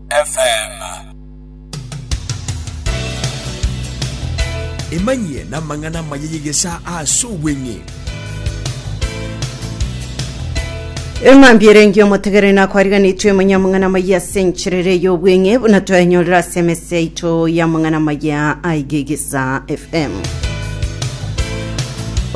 FM. Emanyie namang'ana amaya y'egesaa ase obweng'e. Eng'ambi ere engiya omotegereri nakwariganetwe emanya amang'ana amaya ase enchera ere y'obweng'e buna twaenyorera ase emese yaito y'amang'ana amaya aigegesa fm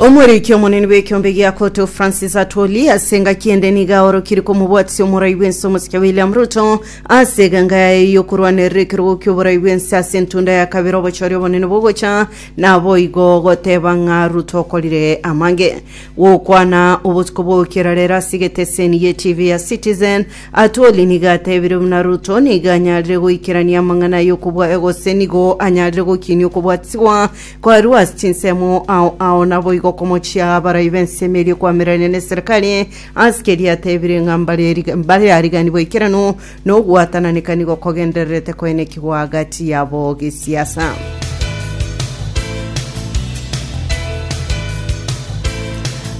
Omoriki omonene bw'ekeombe gia Koto Francis Atwoli ase engaki ende nigo aorokire komobwatisia omorai bw'ense omosike William Ruto ase eganga yaye y'okorwanerera ekerogo ki'oborai bw'ense ase entunda ya kabere obochori obonene bogocha naboigo goteba ng'a Ruto okorire amage gokwana obotuko bw'ogokera rero ase egeteseni ye TV ya Citizen Atwoli nigo atebire buna Ruto nigo anyarire goikerania amang'ana ay'okobwa gose nigo anyarire gokinia okobwatisigwa Kwarua ase chinsemo ao ao naboigo okomochia abarai b'ensemo eria okoamererania neserekari, ase keria atebire ng'a mbareri- mbarariganigwe aikeranu na ogwatananeka nigo kogendererete koenekigwa agati yabo gesiasa.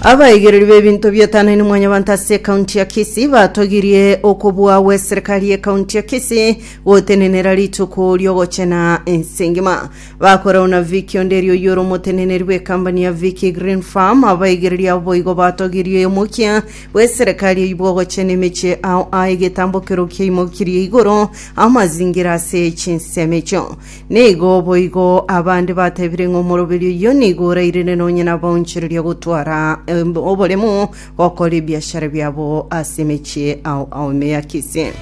Abaigereri b'ebinto biatanani mwanyabanto ase ekaunti ya Kisii batogirie okobua gw'eserekari y'ekaunti ya Kisii gotenenera rituko ri'ogochena ense engima. Bakorao na Vic onde erio oyore omoteneneri bw'ekambani ya Vic Green Farm, abaigereria abo boigo batogirie oyomokia bw'eserekari eyio bw'ogochena emechie ao a egetambokero kiaimokirie igoro amazingira ase chinsemo echio. Nigo boigo abande batebire ng'a omoroberi oyio nigo orairire nonye nabaonchereria gotwara em, oboremu Gokora ebiashara biabo ase emechie ao ao ime ya Kisii.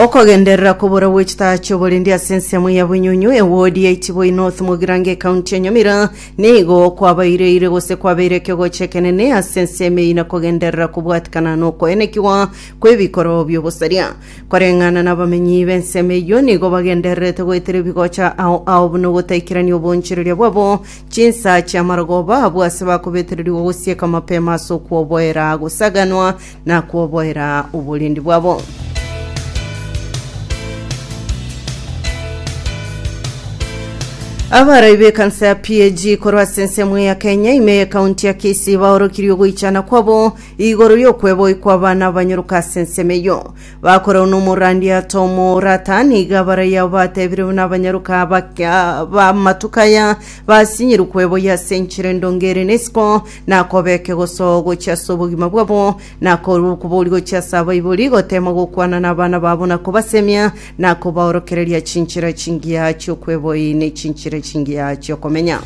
Okogenderera kobora gwe chitaha chioborendi ase ensemo ya Bunyunyu, ewodi ya Itiboi North Mogirango ekaunti ya Nyamira, nigo kwabaireire gose kwabeire ekegocho ekenene ase ensemo eyio na kogenderera kobwatikana na okoenekigwa kw'ebikoro bi'obosaria. Koreng'ana na abamenyi b'ensemo eyio, nigo bagendererete goetera ebigocha ao ao buna ogotaikerania obonchoreria bwabo Chinsa chi'amarogoba abwo ase bakobetererigwa gosieka mapema ase okwoboera gosaganwa na kwoboera oborendi bwabo. Abarai b'ekansa ya PAG korwa ase ensemo ya Kenya ime y'ekaunti ya Kisii baorokirie ogoichana kwabo igoro y'okweboyia kw'abana abanyoroka ase ensemo eyio. Bakorwa nomorandiata omorata, niga baraya batebirewe nabanyaroka abaka- b'amatuko aya, basinyirwe kweboyia ase enchera endonge ere nesiko, na kobeke gosoa gochia ase obogima bwabo, na korwa okobori gochia ase abaibori, gotema gokwana nabana babo na kobasemia, na kobaorokereria chinchera chingiya chi'okweboyia ne chinchera chingiya chi'okomenya.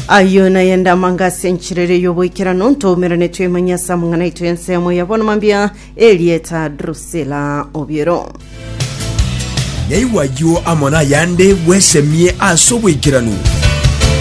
Ayio naye ndamanga ase enchera eria y'oboikeranu ntoumerane twemanye ase amang'ana aito y'ensemo ya bono mambia erieta Drusila Obiero. Naigwa ayio amo nayande bwesemie ase oboikeranu.